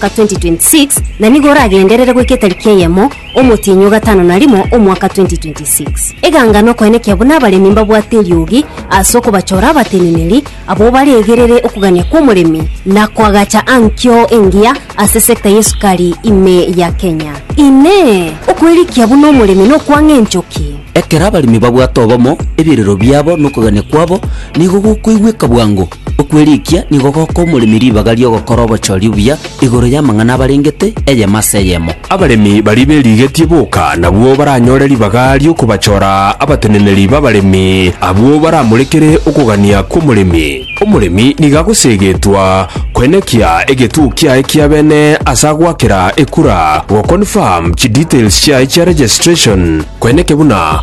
ka 2026, na nigo oragenderere goika etariki eyemo omotienyi o gatano na rimo omwaka 2026. Eganga nokoenekia buna abaremi mbabwate eriogi ase okobachora abateneneri abwo baregerere okogania kw'omoremi na koagacha ankio engiya ase sector y'esukari ime ya Kenya. Inee! Okwerikia buna omoremi nokwang'a enchoki? Ekero abaremi babwate obomo, ebirero biabo na okogania kwabo nigo gokoigweka bwango. Okwerikia nigo goka omoremi ribaga ri'ogokora obochori obuya igoro y'amang'ana abarengete, eyemo ase eyemo. Abaremi baria berigetie boka nabwo baranyore ribaga ri'okobachora abateneneri b'abaremi, abwo baramorekere okogania kw'omoremi. Omoremi nigo agoseegetwa koenekia egetuo kiaye kia bene ase agoakera ekura, goconfirm chidetails chiaye chia registration, koeneke buna